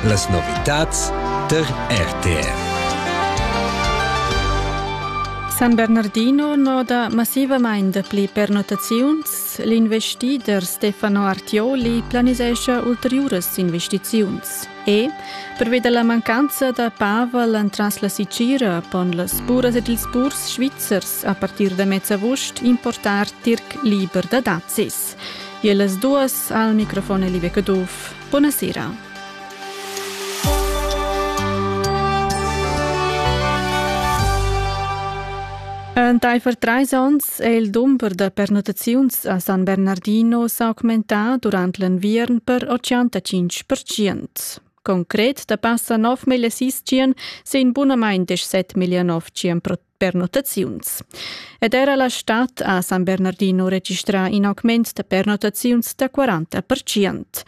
Las novitads tar RTR. San Bernardino noda massivamain dapli pernottaziuns. L'investider Stefano Artioli planisescha ulteriuras investiziuns. E, pervi da la mancanza da Pavel entras la Sicira pon las buras ed ils burs svizzers a partir da mezavust importar tirc liber da dazis. E las duas al microfon Live Caduff. Buona sera. Entaifer trais onns è il dumber da pernottaziuns a San Bernardino s'augmentà durant l'enviern per 85%. Concret da passa 9.600 sin bunamain 17.900 per notaziuns. Ed era la stad ha San Bernardino registrà in augment da pernotaziuns da 40 percent.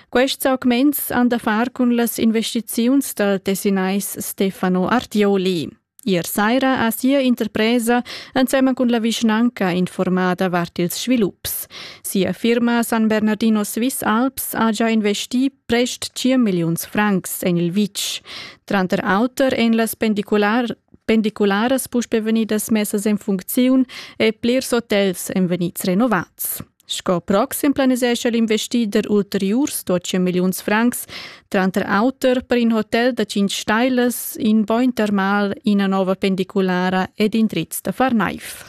Quests augments han da far cun las investiziuns dal tessinais Stefano Artioli. Ier saira ha sia interpresa ensemen cun la vischnanca informada vart ils svilups. Sia firma San Bernardino Swiss Alps ha già investì prest 5 milliuns francs en il vitg. Tranter auter en las pendicular Pendicularas puspè vegnidas messas en funcziun e plirs hotels èn vegnids renovats. Sco proxim planisescha l'investider ulteriurs 12 milliuns francs, tranter auter per in hotel da 5 stailas, in bain termal, ina nova pendiculara ed indrizs da far naiv.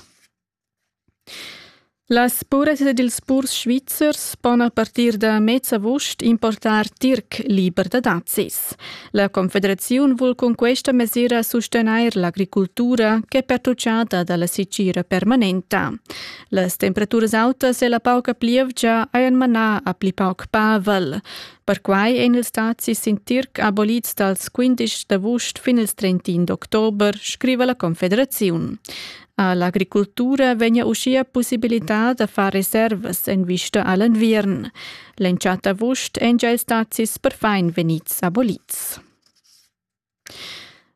Las puresas ed ils purs svizzers pon a partir da mez avust importar tirc liber da dazis. La Confederaziun vul cun questa mesira sustegnair l'agricultura ch'è pertutgada da la sitgira permanenta. Las temperaturas autas e la pauca plievgia hajan manà a pli pauc pavel. Perquai èn ils dazis sin tirc abolids dals 15 d'avust fin ils 31 d'october, scriva la Confederaziun. ha l'agricultura vegnia uschia pussibilità da far reservas en vista a l'enviern. L'entschatta avust èn gia stazis perfin vegnids abolids.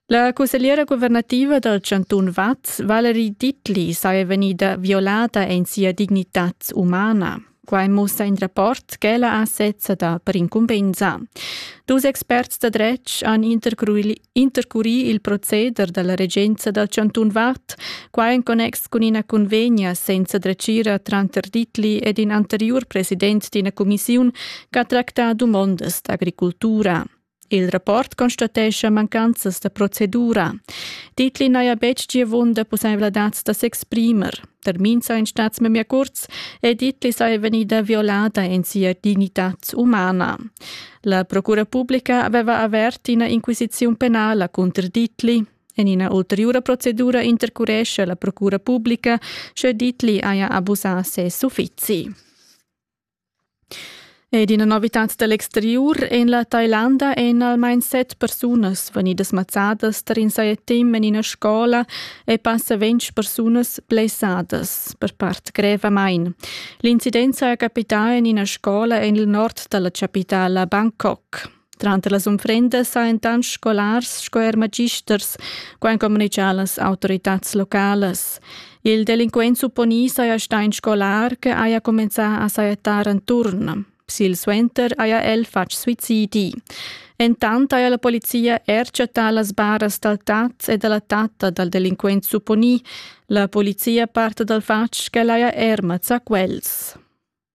La cussegliera guvernativa dal chantun Vaz, Valerie Dittli, saja vegnida violada en sia dignitad umana. Quai mussa in rapport ch'ella ha sezza dà per incumbensa. Dus experts da dretg han intercurì il proceder da la regenza dal chantun Vad, quai en connex cun ina convegna senza dretgira tranter Ditli ed in anteriur president d'ina cumissiun ch'ha tractà dumondas d'agricultura. Il rapport constatescha mancanzas da procedura. Titli n'haja betg giavunda pussaivladads da s'exprimer. Termin saja in stats memia kurz e Titli saja vegnida violada en sia dignitad umana. La Procura publica aveva avert ina inquisiziun penala contro Titli. En ina ulteriura procedura intercuresce la Procura publica sche Titli haja abusà ses uffizi. Ed ina novitad da l'exteriur en la Tailanda èn almain set persunas vegnidas mazzadas tar in sajettem en ina scola e passa ventg persunas blessadas per part grevamain. L'incident saja capità en ina scola en il nord da la chapitala Bangkok. Tranter las unfrendas sajan tant scolars sco er magisters, quai communitgia las autoritads localas. Il delinquent supponì saja stà in scolar che haja cumenzà a sajettar enturn. Silsuenter haja el fatg suicidi. Entant haja la polizia er chattà las baras dal tat e da la tatta dal delinquent supponì. La polizia parta dal fatg ch'el haja er mazzà quels.